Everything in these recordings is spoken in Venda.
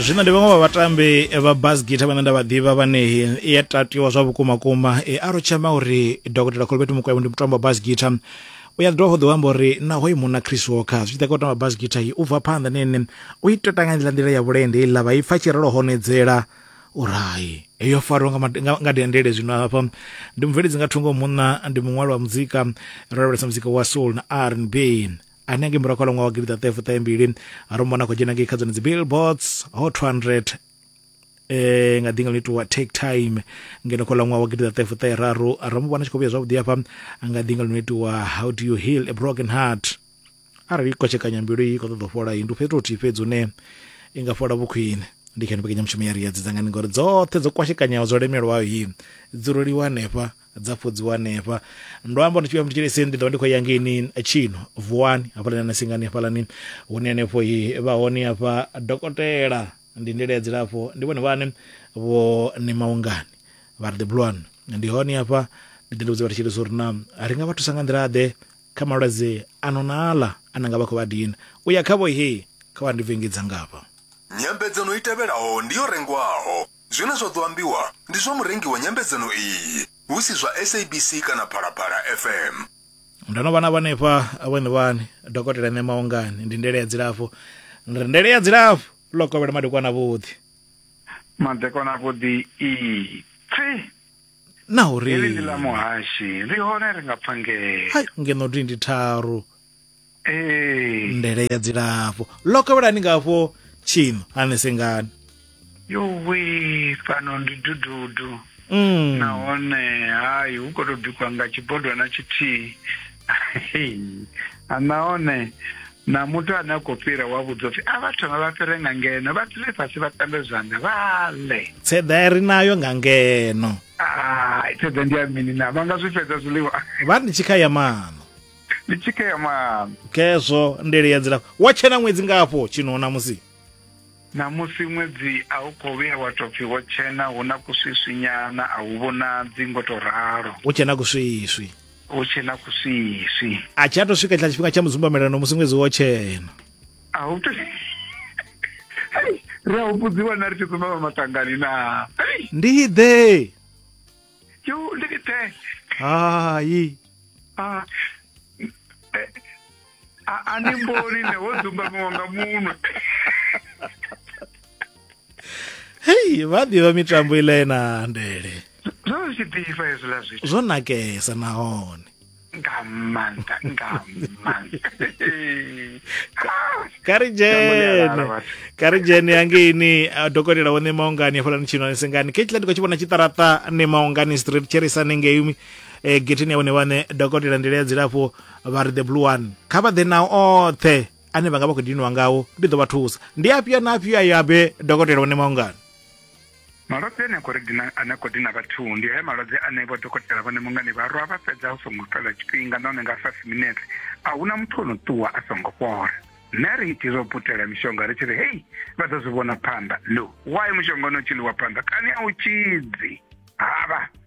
zwino ndi vhaṅwe vha vhatambi vha bas gita vhane nda vha ḓivha vhane i a tatiwa zwa vhukuma kuma e a rotshema uri dokotela kholobeti mukwevho ndi mutambo wa bas gita u ya dovha ḓo amba uri naho i muna chris walker zwi tshi ḓa kha u tamba bas gita i u bva phanḓa nene u i tota nga nḓila nḓila ya vhulende iḽa vha i pfa tshirelo honedzela urayi yo fariwa nga dendele zwino hafha ndi mubveledzi nga thungo munna ndi muṅwali wa muzika ro lavhelesa muzika wa soul na r n b hanengei murahu kha ḽa ṅwaha wa gidi ṱaṱahe fuṱahe mbili ro mona khou dzhena ngei kha dzone dzi billboards hot 200 eh nga dinga litowa take time ngeno khola ṅwaha wa gidida ṱefu ṱe raru ra mu vhona tshi khou vhuya zwavhuḓi hafha nga dinga lino itiwa how do you heal a broken heart arali i kotshekanya mbilu i khou ṱoḓa u fhola ndi u fhethu uthihi fhedzi une i nga fhola vhukhwine ndi kha ni mbekanyamushumo ya ri ya dzidzangani ngori dzoṱhe dzo kwashekanyaho dzo lemelwaho hi dzi roliwa hanefha dza fhodziwa hanefha ndo amba ndi tshivhuya ndi tshilese ndi ḓovha ndi khou ya ngeini tshino vuwani hafhaḽani na singani hafhaḽani hune hanefho hi vha hone hafha dokotela ndi ndele ya dzilafho ndi vhone vhane vho ni maungani vha ri the blue one ndi hone hafha ndi ḓi ndi vhudza vha ri tshilese uri na ri nga vha thusa nga nḓila ḓe kha malwadze ano na aḽa a na nga vha khou vha dina u ya khavho he kha vha ndi vengedza ngafha Nyambedzano i tevhelaho ndi yo rengwaho. Zwine zwa ḓo ambiwa ndi zwa murengi wa nyambedzano iyi, hu si zwa SABC kana Phalaphala FM. Ndo no vha na vhanefha vhone vhane dokotela ṋe maongani ndi ndele ya dzilafho ndi ri ndele ya dzilafho ḽo kovhela madekwana vhuḓi madekwana vhuḓi ii pfi na uri heli ndi ḽa muhashi ri hone ri nga pfa ngeno hai ngeno dindi tharu ee ndele ya dzilafho ḽo kovhelani ngafho tshino hani sengani yuwi fhano ndi dududu mm. nahone hai hu khou tou bikiwa nga tshibodwana tshithihi Hei. A, nahone na muthu ane a khou fhira wa vhudza upfi a vha thome vha fhire nga ngeno vha dzule fhasi vha tambe zwanḓa vha ḽe tseḓa i ri nayo nga ngeno Ah, thaidzo ndi ya mini na vha nga zwi fhedza zwiḽiwa vha ndi tshikha ya maṋo ndi tshikema khezwo ndele ya dzilafho wa tshena ṅwedzi ngafho tshino namusi namusi ṅwedzi a u khou vhuya wa tou pfi wo tshena hu na kuswiswinyana a hu vhonadzi ngo to ralo u tshena kuswiswi hu tshena kuswiswi a tshi a to swika tshila tshifhinga tsha mudzumbamelano musi ṅwedzi wo tshena a hu to Hei, ri a humbudziwa na ri tshi dzumbama matangani na Hei, ndi ḓe Yo le grité. Aïe. Ah. Eh, a ni mboni ne wo dzumba muwanga munwe hei vha ḓivha mitambo iḽa ye na ndele zwo zwi tshi ḓifha hezwiḽa zwithu zwo nakesa nahone nga maanḓa nga maanḓa kha ri dzhene kha ri dzhene hangeini dokotela wo ṋema ungani hafhaḽani tshino ni sengani khetshila ndi khou tshi vhona tshiṱaraṱa ṋema ungani street tsherisane ngei um eh, getheni ya vhone vhaṋe dokotela nḓila ya dzilafho vha ri the blue one kha vha ḓe na oṱhe ane vha nga vha khou dinwa ngawo ndi ḓo vha thusa ndi afhio na afhio ayo abe dokotela wo ṋema ungani Malwadze ane a khou ri dina ane a khou dina vhathu ndi haya malwadze ane vho dokotela vhone mungani vha rwa vha fhedza hu songo fhela tshifhinga nahone nga five minutes a huna muthu o no ṱuwa a songo fhola nṋe ri iti zwo putela mishonga ri tshi ri hei vha ḓo zwi vhona phanḓa lo why mushonga ono tshi ḽiwa phanḓa kani a u tshidzi havha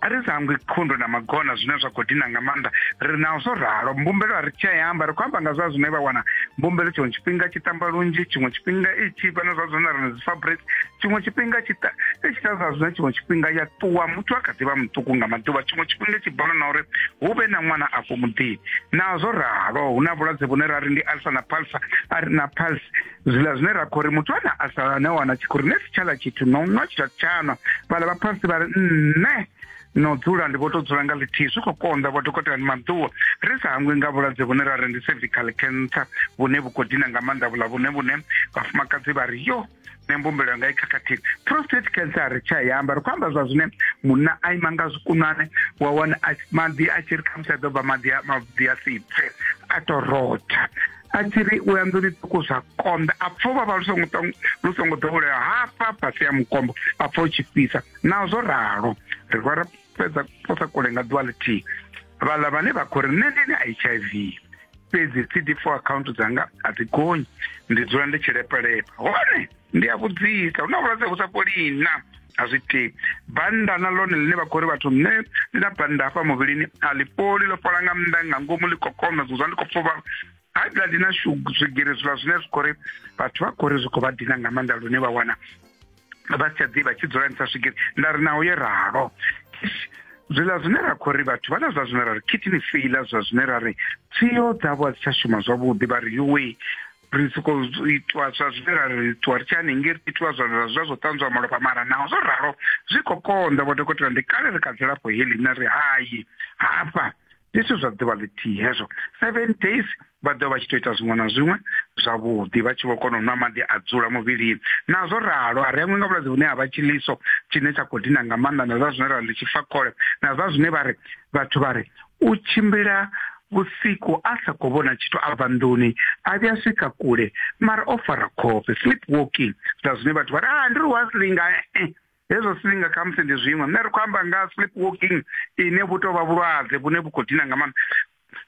a ri sa hangwi khundu na magona zwine zwa khou dina nga maanḓa ri naho zwo ralo mbumbelo a ri tshi ya amba ri khou amba nga zwa zwine vha wana mbumbelo tshiṅwe tshifhinga tshi tamba lunzhi tshiṅwe tshifhinga i tshi vha na zwa zwine ri na dzi fabric tshiṅwe tshifhinga tshi ta i tshi ta zwa zwine tshiṅwe tshifhinga ya ṱuwa muthu a kha ḓivha muṱuku nga maḓuvha tshiṅwe tshifhinga tshi bola na uri hu vhe na ṅwana afho muḓini naho zwo ralo hu na vhulwadze vhune ra ri ndi alfa na palsa a ri na pulse zwiḽa zwine ra khou ri muthu ane a sa ne wana tshi khou ri ne si tshala tshithu no nwa tshithu tshanwa vhala vha phasi vha ri nṋe no dzula ndi vho to dzula nga ḽithihi zwi khou konḓa vho dokotela ni maḓuwa ri sa hangwi nga vhulwadze vhune ra ri ndi cervical cancer vhune vhu khou dina nga maanḓa vhula vhune vhune vhafumakadzi vha ri yo ne mbumbelo yanga i khakhathini prostate cancer a ri tsha i amba ri khou amba zwa zwine munna a ima nga zwikunwane wa wana maḓi a tshi ri khamusi a ḓo bva maḓi a maḓi a si pfe a to rotha a tshi ri u ya nḓuni ṱuku zwa konḓa a pfa uvhavha lu songo lu songo ḓowelea hafha fhasi ya mukombo a pfa u tshi fhisa naho zwo ralo ri vha ra fhedza posa kule nga ḓuvha ḽithihi vhaḽa vhane vha khou ri nṋe ndi na h i v fhedzi cd four account dzanga a dzi gonyi ndi dzula ndi tshi lepelepa hone ndi a vhudzisa hu na vhulwadze vhu sa fholi na a zwi tei bannda na ḽone ḽine vha khou ri vhathu nṋe ndi na bannda hafha muvhilini a ḽi fholi ḽo fhola nga nnḓa nga ngomu ḽi kokona zwi zwa ndi khou pfuvha high blood na swigiri zwiḽa zwine zwi khou ri vhathu vha khou ri zwi khou vha dina nga maanḓa lune vha wana vha si tsha ḓivha tshi dzula ni sa swigiri nda ri naho yo ralo zwiḽa zwine ra khou ri vhathu vha na zwa zwine ra ri khithini feiḽa zwa zwine ra ri tsio dzavho a dzi tsha shuma zwavhuḓi vha ri yuwe ri soko itwa zwa zwine ra ri ṱuwa ri tshi hanengei ri itiwa zwa zwa zwa zwo ṱanzwa malofha mara naho zwo ralo zwi khou konḓa vho dokotela ndi kale ri kha dzilafho heḽi na ri hayi hafha ndi zwithu zwa ḓuvha ḽithihi hezwo seven days vha ḓo vha tshi to ita zwiṅwe na zwiṅwe zwavhuḓi vha tshi vho kona u nwa maḓi a dzula muvhilini nazwo ralo a ri aṅwe nga vhulwadze vhune ha vha tshiliso tshine tsha khou dina nga maanḓa na zwa zwine ra ḽi tshifakhole na zwa zwine vha ri vhathu vha ri U tshimbila vhusiku a sa khou vhona tshithu a bva nḓuni a vhuya swika kule mara o fara khofhe sleep walking zwa zwine vhathu vha ri ah ndi ri wa silinga eh hezwo silinga kha musi ndi zwiṅwe nṋe ri khou amba nga sleep walking ine vhu tou vha vhulwadze vhune vhu khou dina nga maanḓa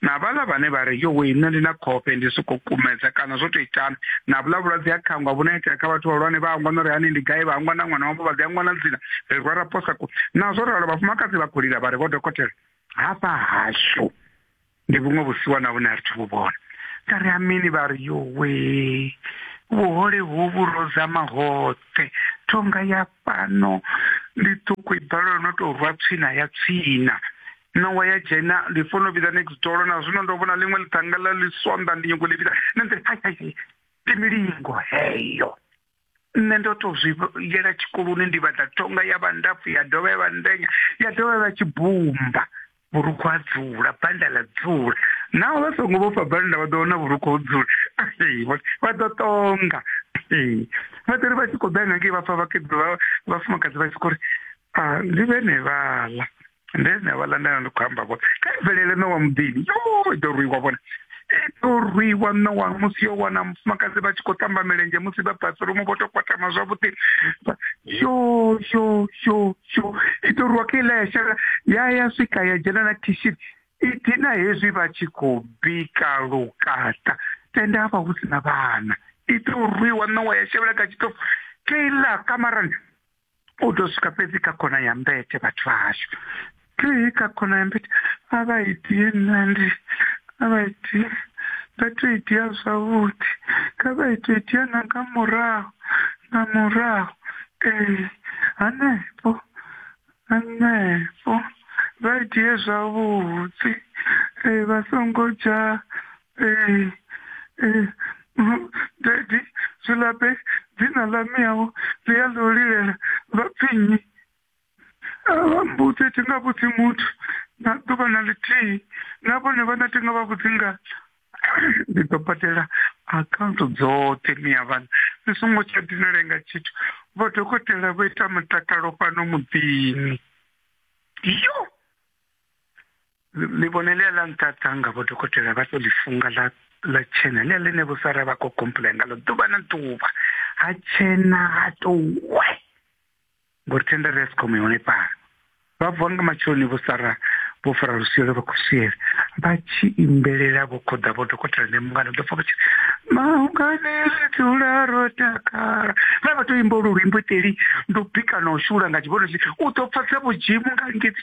na vhala vhane vha ri yo we nṋe ndi na khofhe ndi sokou kumedza kana zwo tou itani na vhula vhulwadze ha khangwa vhune itea kha vhathu vhahulwane vha hangwa no ri hani ndi gai vha hangwa na ṅwana wavho vha ḓi hangwa na dzina ri rwa ra posa ku nazwo ralo vhafumakadzi vha khou lila vha ri vho dokotela hafha hashu ndi vhuṅwe vhusiwa na vhune a ri thi vhu vhona nda ri amini vha ri yowe vhuhole hovhu ro zama hoṱhe thonga ya fhano ndi ṱuku i balelwa no tou rwa tswina ya tswina ṋawa ya dzhena ndi fono vhidza next door na zwino ndo vhona ḽiṅwe ḽithanga ḽa ḽi swonḓa ndi nyongo ḽi vhidza na nḓila hai hai ndi milingo heyo nṋe ndo to zwi yela tshikoloni ndi vhaḓa tonga ya vha ndapfu ya dovha ya vha ndenya ya dovha ya vha tshibumba vhurukhu ha dzula banda ḽa dzula naho vha songo vhofha banda vha ḓo wana vhurukhu ho dzula vha ḓo tonga vha ḓori vha tshi khou ḓa ngangei vha pfa vhafumakadzi vha tshi khou ri ndi vhene vhaḽa nde nṋe vhaḽa nda ndi khou amba vhone kha bvelele no wa muḓini yo ḓo rwiwa vhone ḓo rwiwa nowa musi yo wana mufumakadzi vha tshi khou tamba milenzhe musi vha bathroom vho to kwatama zwavhuḓi yo yo yo yo i ḓo rwiwa kha iḽa ya shela ya ya swika ya dzhena na khishini i dina hezwi vha tshi khou bika lukata tenda havha hu si na vhana i ḓo rwiwa nowa ya shevhela kha tshitofu kha iḽa kamarani u ḓo swika fhedzi kha khona ya mbete vhathu vha hashu tei kha khona ya mbete a vha itie nandi a vha itie vha to itia zwavhuḓi kha vha ito itia na nga murahu nga murahu ee hanefho hanefho vha itie zwavhuḓi ee vha songo dzha ee ee mm, dadi zwi labe dzina ḽa miyaho ḽi ya ḽo lilela vha pfinyi vha mbudzi thi nga vhudzi muthu na ḓuvha na ḽithihi na vhone vhana thi nga vha vhudzi nga ndi ḓo badela akhaunthu dzoṱhe miya vhana ni songo tsha dinale nga tshithu vho dokotela vho ita mutakalo fhano muḓini yo ḽivhone ḽia ḽa nṱaṱa nga vho dokotela vha to ḽi funga ḽa ḽa tshena ḽia ḽine vho sara vha khou complain nga ḽo ḓuvha na ḓuvha ha tshena ha to we ngori tenda ri escom yone pala vha vuwa nga matsheloni vho sara vho fara lusielo vha khou siela vha tshi imbelela vho khoḓa vho dokotela ne mungana ḓo pfa vha tshi maungane ri dzula ro takala vha vha to imba lu luimbo iteli ndo bika na u shula nga tshivhono tshi u ḓo pfa dza vhudzimu nga ngedzi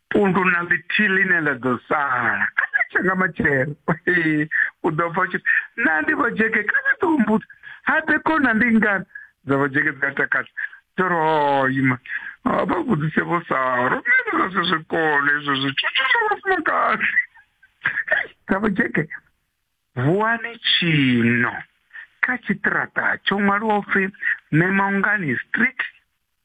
pundu na ḽithihi ḽine ḽa ḓo sala kha ḽa tsha nga matshelo u ḓo pfa tshi na ndi vhojeke kha vha ḓo humbudza ha ḓe kona ndi ngani dza vhojeke dzi a takadza dzo ri hoima vha vhudzise vho saa ro mene zwa si zwi kone izwo zwithu zwi zwa vhafumakadzi dza vhojeke vuwani tshino kha tshiṱiraṱa tsho ṅwaliwa upfhi memongani street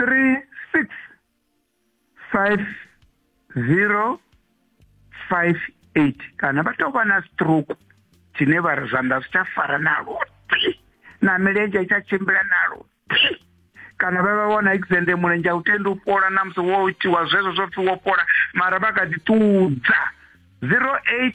058 kana vha tou vha na stroke tshine vha ri zwanḓa zwi tsha fara nalo na milenzhe i tsha tshimbila nalo kana vha vha wana exende mulenzhe a u tendi u fhola na musi wo itiwa zwezwo zwo pfi wo fhola mara vha kha ḓi ṱudza 08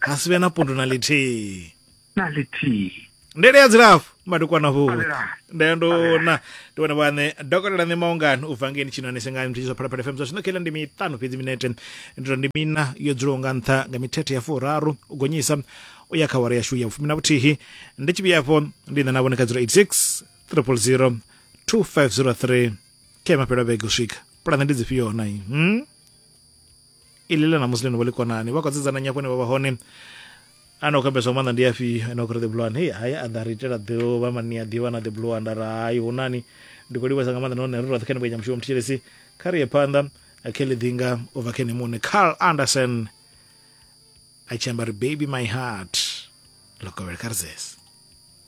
ha si vhe na pundu na lithihi na lithihi ndele ya dzilafho madekwana vhuḓi ndeya ndona ndi vhone vhaṋe dokotela ṋe maungani u bva ngeni tshinoni sengani muthishi zwa phalaphala fm zwa zwino khela ndi miṱanu fhedzi minete ndito ndi mina yo dzulaho nga nṱha nga mithethe ya furaru u gonyisa u ya kha wara yashu ya vhufumi na vhuthihi ndi tshi vhuyafho ndi ṋa na vhone kha 086 000 2503 ke mafhelo a vhege u swika pulane ndi dzifhio hona i hmm? iḽi ḽa namusi ḽino vha ḽi konani vha khou sedzana nyafho ne vha vha hone ana khou ambeswa maanḓa ndi afhio ene khou ri the blue one hei hai a ḓa ri itela ḓuvha mani a ḓivha na the blue one nda ri hai hu nani ndi khou livhesa nga maanḓa nahone ri roṱhe kha ni vhenya mushumo muthetshelesi kha ri ye phanḓa khe ḽi ḓinga u bva khe ni muṋe carl anderson a tshi amba ri baby my heart lokovhele kha ri zese